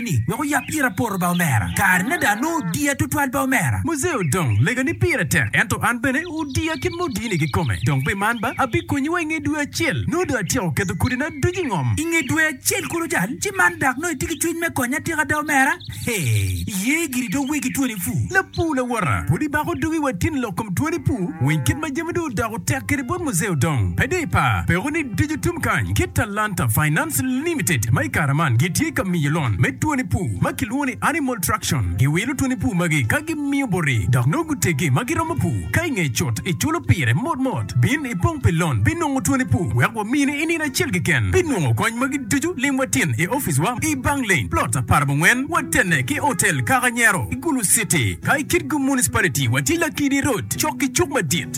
ni wek oyab ira poto ba omera. Kare ni ada nongo odiya tutwal ba omera. Muzee odong lega ni pire tek ento an bene odiya kit ma odini kikome. Dong pi man ba abikonyi wa inge dwe acel nongo dong atyeko keto kodi na ducu ingom. Inge dwe acel kulu cal ci man dak nongo itye ki cwiny me konya atika ada omera? Hee iye giri dong wegi twoni puu. Lapuu lawota pud ibako dugi wa tin lok kom twoni puu weny kit ma jami dong odoko. Tek kede bot Muzeo dong pe dii pa peko ni Dijo Tum Kany ki Talanta Finance Limited ma i kare man gitye ka miyo lon me twoni pur ma kilwongo ni Animal Traction. Giwilo twoni pur magi ka gimiyo boti dok nongo guteggi ma giromo pur. Ka i ngeye cut iculo pire mot mot, bin ipong pi lon pi nongo twoni pur wek wamini i nino acel keken. Pi nongo kony magi ducu lim watin i oficwa i Bang Lane, Plot apar abongwen, watenne ki Hotel Kaka Nyero i Gulu City. Ka i Kitgum Municipality, watye Lakidi Road cok ki cuk madit.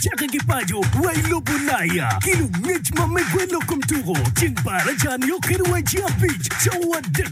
Cake ki paco wa i lobo Ulaya ki lungec ma me gwelo kom tuko ceng baraca nio kede waci abic cawa adek